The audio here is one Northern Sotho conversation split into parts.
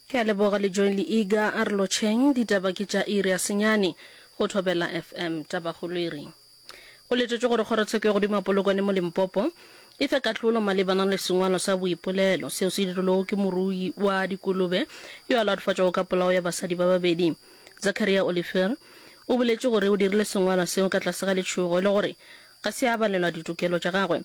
Ke a leboga Lejoeng le Iga a re lotšheng. Ditaba ke tša iri ya senyane go Thobela FM. Tabakgolo e re go letetšwe gore kgorotsheko ya godimo ya Polokwane mo Limpopo e fe kahlolo malebana le sengwalo sa boipolelo seo se dirilwego ke morui wa dikolobe yo a latofaditšwego ka polao ya basadi ba babedi. Zacharia Olifer o boletše gore o dirile sengwalo seo ka tlase ga letšhogo le gore ga se a abelelwa ditokelo tša gagwe.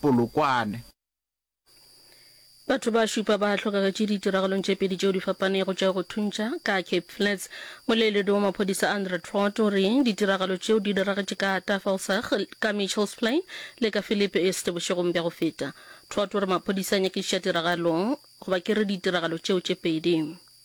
Polokwane. Batho ba šupa ba hlokagetše ditiragalong tše pedi tšeo di fapanego tša go thuntša ka Cape Flats. Moleeledi wa maphodisa Andre Traut o re ditiragalo tšeo di diragetše ka Tafelsig, ka Mitchells Plain le ka Phillip East bošegong bja go feta. Traut o re maphodisa a nyakišiša tiragalo, goba ke re ditiragalo tšeo tše pedi.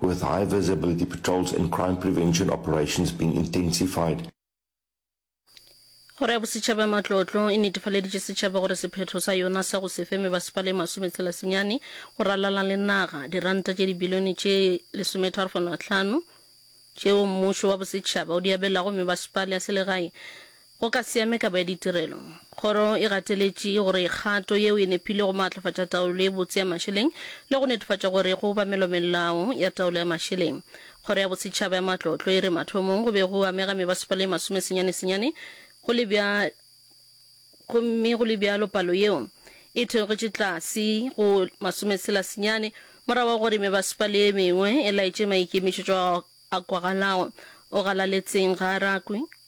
with high visibility patrols and crime prevention operations being intensified. Kgoro ya Bosetšhaba ya Matlotlo e netefaleditše setšhaba gore sephetho sa yona sa go se fe mebasepa le masometshela senyane go ralala le naga, diranta tše dibilione tše lesometharo-fano-a-tlhano tšeo mmušo wa bosetšhaba o di abelago mebasepala ya selegae, Go ka se ame kabo ya ditirelo. Kgoro e gateletše gore kgato yeo e nepile go maatlafatša taolo e botse ya mašeleng le go netefatša gore go obamelwa melao ya taolo ya mašeleng. Kgoro ya Bosetšhaba ya Matlotlo e re mathomong go be go amega mebasepala ye masome senyane-senyane go le bja gomme go le bjalo palo yeo e theogetše tlase go masome tshela senyane morago ga gore mebasepala ye mengwe e laetše maikemišetšo a kwagalago o galaletseng ga a rakwe.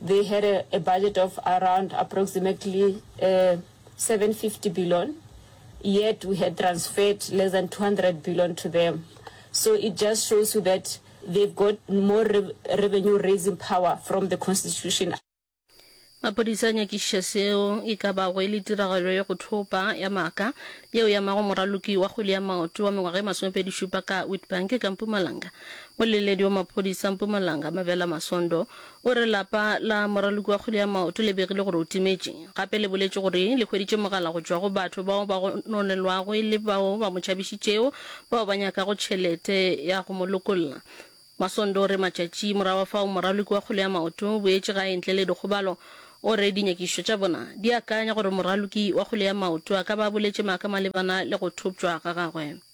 They had a, a budget of around approximately uh, eh, 750 billion, yet we had transferred less than 200 billion to them. So it just shows you that they've got more re revenue raising power from the constitution. maphodisa a nyakišiša seo e ka bago e le tiragalo ya go thopa ya maaka yeo ya mago moraloki wa kgwele ya maoto wa mengwaga e masomepedi šupa ka witbank ka mpumalanga moleledi wa maphodisa mpumalanga mabela masondo O re lapa la moraloki wa kgwele ya maoto le begile gore o timetše. Gape le boletše gore le hweditše mogala go tšwa go batho bao ba gononelwago e le bao ba mo tšhabišitšego bao ba nyakago tšhelete ya go mo lokolla. Masondo o re matšatši morago ga fao moraloki wa kgwele ya maoto o boetše gae ntle le dikgobalo. O re dinyakišišo tša bona di akanya gore moraloki wa kgwele ya maoto a ka ba a boletše maaka malebana le go thoptšwa ga gagwe.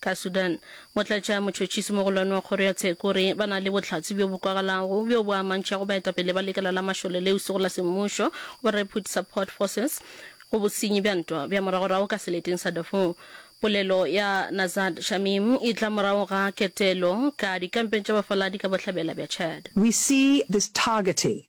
Ka Sudan, motlatša motšhotšhisi mogolwane wa kgoro ya tsheko o re ba na le bohlatse bjo bo kwagalago bjo bo amantšhago baetapele ba lekala la mašole leo sego la semmušo, ba Rapid Support Forces, go bosenyi bja ntwa bja moragorago ka seleteng sa Darfur. Polelo ya Nazad Shamim e tla morago ga ketelo ka dikampeng tša bafaladi ka bohlabela bja Chad. We see this targeting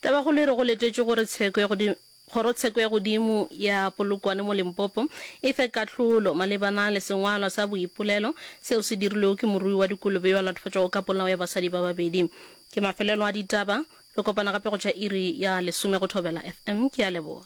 Tabakgolo e re go letetšwe gore tsheko ya godimo Kgorotsheko ya Godimo ya Polokwane mo Limpopo e fe kahlolo malebana le sengwalwa sa boipolelo seo se dirilwego ke morui wa dikolobe yo a latofatšwago ka polao ya basadi ba babedi. Ke mafelelo a ditaba. Re kopana gape go tšwa iri ya lesome go thobela FM. Ke a leboga.